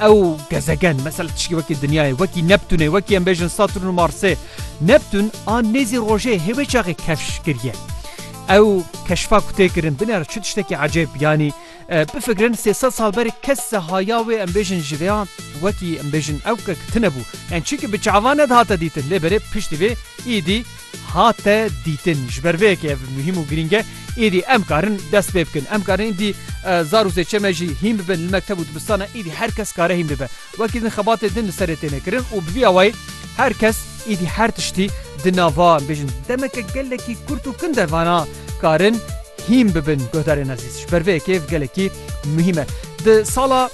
Ew gezegen mesela tişkî wekî dinyayê wekî Neptûnê wekî em bêjin Saturn û Marsê Neptûn a nêzî rojê hêvê çaxê kevş kiriye. Ew keşfa ku tê kirin binê re çi tiştekî ecêb yanî bifikirin sê sed sal berê kes haya wê em bêjin ji vê an wekî em bêjin ew ke tine bû. Yan çi ki bi çavan ne dihate dîtin lê berê piştî vê îdî hate dîtin. Ji ber vê yekê ev muhîm û girîng e. Êdî em karin dest pê bikin. Em karin êdî zar û zêçe me jî hîn bibin li mekteb û dibistana êdî her kes kare hîn bibe. Wekî din xebatê din li serê têne kirin û bi vî awayî her kes êdî her tiştî di nava em bêjin demeke gelekî kurt û kin de vana karin hîn bibin guhdarên ezîz. Ji ber vê yekê ev gelekî muhîm e. Di sala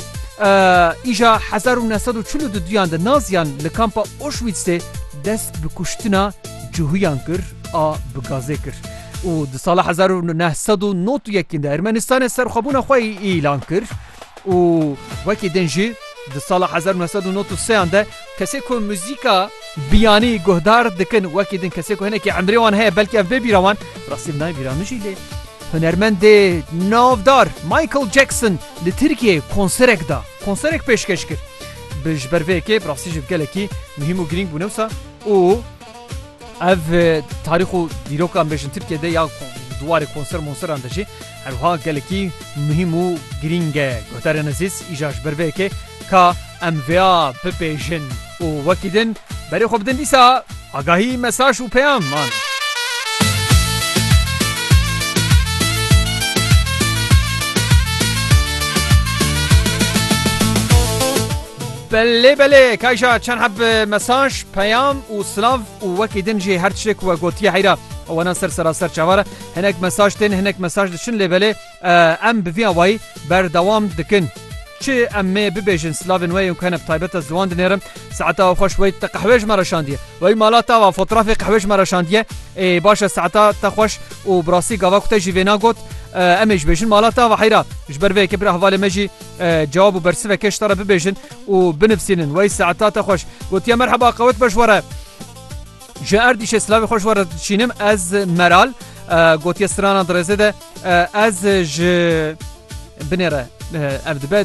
îja hezar û neh sed û çil û du duyan de Naziyan li kampa Auschwitzê dest bi kuştina cihûyan kir a bi gazê kir û di sala hezar û neh sed û nod û yekîn de Ermenistanê serxwebûna xwe îlan kir. û wekî din jî di sala hezar û neh sed û nod û seyan de kesê ku muzîka biyanî guhdar dikin wekî din kesê ku hinekî emrê wan heye belkî ev bê bîra wan rastî nayê bîra min jî lê hunermendê navdar Michael Jackson li Tirkiyeyê konserek da konserek pêşkeş kir bi ji ber vê yekê bi rastî jî gelekî muhîm û girîng bû ne wisa û Ev tarîx û dîrokan bêjin Tirkiye de ya di warê konser monseran de jî herwiha gelekî muhîm û girîng e. Guhdarên ezîz îja ji ber vê yekê ka em vêya bipêjin û wekî din berê xwe bidin dîsa agahî, mesaj û peyam man. Belê belê kayja çend heb mesaj, peyam û silav û wekî din jî her tiştê ku we gotiye heyra wanan ser seraser çavar e. Hinek mesaj tên hinek mesaj diçin lê belê em bi vî awayî berdewam dikin. Çi em mê bibêjin silavên we yên ku hene bi taybet ez ziwan dinêrim. Saeta we xweş wey te qehwê ji me re şandiye. Wey mala te va fotrafê qehwê ji me re şandiye. Ê baş e saeta te xweş û bi rastî gava ku te jî vê na got. Em ê ji bêjin mala te va heyra. Ji ber vê yekê bira hevalê me jî Cewab û bersiveke ji te re bibêjin û binivsînin. Wey saeta te xweş. Gotiye merheba qewet be ji we re. Ji Erdîşê silavê xwe ji we re dişînim ez Meral gotiye sirana di rêzê de ez ji binê re ev dibe